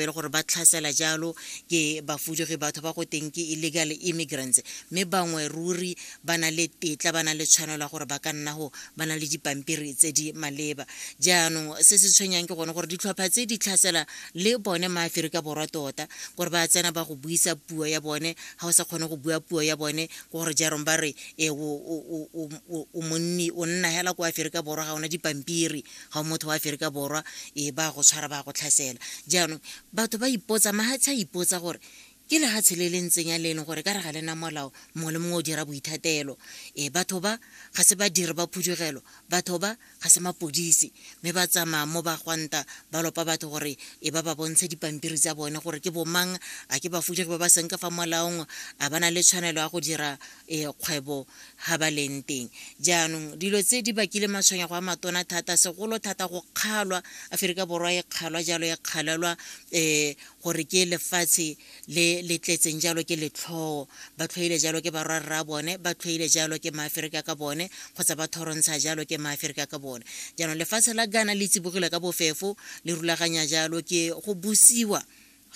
e le gore ba tlhasela jalo ke bafudugi batho ba go teng ke illegal immigrants mme bangwe ruri ba na le tetla ba na le tshwanelo ya gore ba ka nna go ba na le dipampiri tse di maleba jaanong se se tshwenyang ke gone gore ditlhopha tse di tlhasela le bone maaferika borwa tota gore ba tsena ba go buisa puo ya bone ga o sa kgone go bua puo ya bone ke gore jaanong ba re e o monni o nna hela ko aferika borwa ga ona dipampiri ga o motho wa aferika borwa e ba go tshwara ba go tlhasela jaanong batho ba ipotsa mahatsha a ipotsa gore ke lehatshe le le ntseng ya le e leng gore ka re ga le na molao mongwe le mongwe o dira boithatelo e batho ba ga se ba dire ba phudugelo batho ba ga se mapodisi mme ba tsamaya mo ba gwanta ba lopa batho gore e ba ba bontshe dipampiri tsa bone gore ke bomang a ke bafudugi ba ba seng ka fa molaong a ba na le tshwanelo ya go dira e kgwebo ga ba leng teng jaanong dilo tse di bakile matshwenyego a matona thata segolo thata go kgalwa aferika borwa e kgalwa jalo e kgalelwa um gore ke lefatshe le le tletseng jalo ke letlhoo ba tlhoile jalo ke barwa rra bone ba tlhoile jalo ke maaferika ka bone kgotsa ba thorontsha jalo ke maaferika ka bone jaanong lefatshe la gana le tsibogile ka bofefo le rulaganya jalo ke go busiwa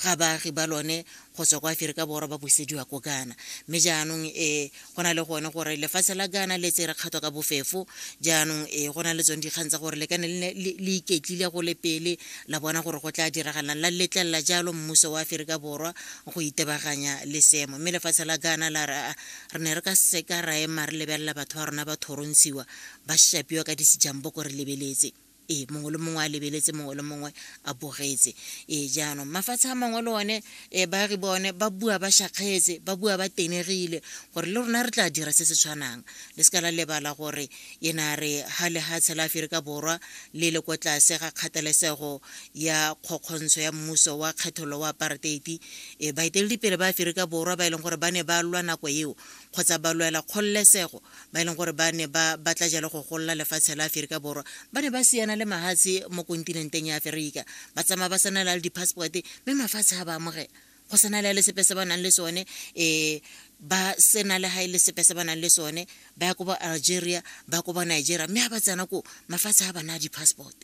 ga baagi ba lone go tswa kwa aferika borwa ba busediwa ko ghana mme jaanong e go na le gone gore lefatshe la ghana le tsere kgato ka bofefo jaanong e go na le tsone dikgang tsa gore le ka ne le iketlile go le pele la bona gore go tla diragalang la letlelela jalo mmuso wa aferika borwa go itebaganya le seemo mme lefatshe la ghana la re re ne re ka seka ra ema re lebelela batho ba rona ba thorontshiwa ba shapiwa ka disejambo ko re lebeletse ee mongwe le mongwe a lebeletse mongwe le mongwe a bogetse ee jaanong mafatshe a mangwe le one um baagi bone ba bua ba shakgetse ba bua ba tenegile gore le rona re tla dira se se tshwanang le se ka la lebala gore e na re ga lehatshe la aferika borwa le le ko tlase ga kgathalesego ya kgokgontsho ya mmuso wa kgethololo wa aparteiti um baeteledipele ba aferika borwa ba e leng gore ba ne ba lwa nako eo kgotsa ba lwela kgololesego ba e leng gore ba ne ba batla jalo go golola lefatshe la aferika borwa ba ne ba siana le mahatshe mo kontinenteng ya aferika ba tsamaya ba sena le di-passporte mme mafatshe a ba amogela go sena le le sepe se ba nang le sone um ba sena le ga e le sepe se ba nang le sone ba ya ko ba algeria ba ko ba nigeria mme ga ba tsena ko mafatshe a ba naya di-passport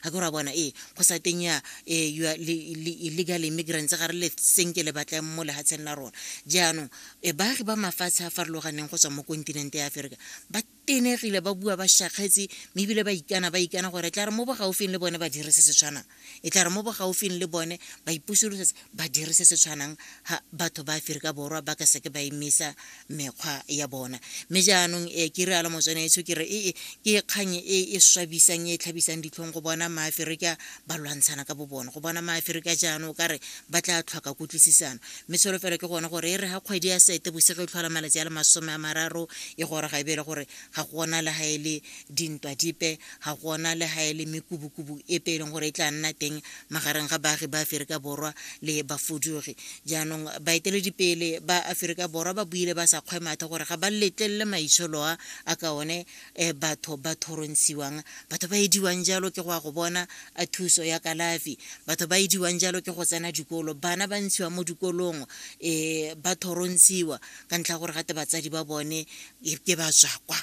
ga ke ra bona ee go sa teng ya eh, your illegal immigrants ga re le senke le batlang mo lehatsheng la rona jaanong eh, baagi ba mafatshe a farologaneng go tswa mo kontinente ya aferika ba tenegile ba bua ba shakgetse mme ebile ba ikana ba ikana gore e tla re mo bogaufing le bone ba dire se se tshwanang e tla re mo bogaufing le bone ba ipusolosetse ba dire se se tshwanang ha batho ba aferika borwa ba ka seke ba emisa mekgwa ya bona mme jaanong e ke realo motswanetso ke re ee ke kgang e e swabisang e e tlhabisang ditlhong go bona maaferika ba lwantshana ka bo bone go bona maaferika jaanong o ka re ba tla tlhoka kutlwisisano mme tsholofelo ke gone gore e re ga kgwedi ya sete bosego e tlhola malatsi a le masome a mararo e gore ga e beele gore ga gona le ga e le dintwa dipe ga gona le ga e le mekubukubu epe e leng gore e tla nna teng magareng ga baagi ba Aferika Borwa le bafudugi. Jaanong baeteledipele ba Aferika Borwa ba buile ba sa kgwemathe gore ga ba letlelele maitsholo a a ka one eh, batho ba thorontshiwang batho ba ediwang jalo ke go ya go bona a thuso ya kalafi batho ba ediwang jalo ke go tsena dikolo bana ba ntshiwa mo dikolong um ba thorontshiwa ka ntlha gore gate batsadi ba bone eh, ke batswakwa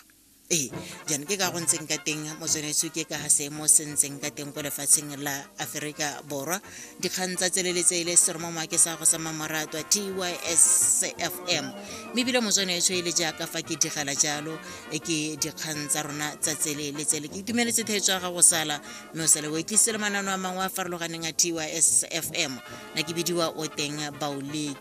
ee jaana ke ka go ntseng ka teng motsweneso ke ka seemo se ntseng ka teng ko lefatsheng la aforika borwa dikgang tsa tseleletse e le seromoma ke sa go sa mmamoratwa tysfm mme ebile motsweneso e le jaaka fa ke digela jalo e ke dikgang tsa rona tsa tseleletsele ke itumeletse theetso ya gago sala mme o sale o etlise le manano a mangwe a farologaneng a tysfm na ke bidiwa o teng baoleki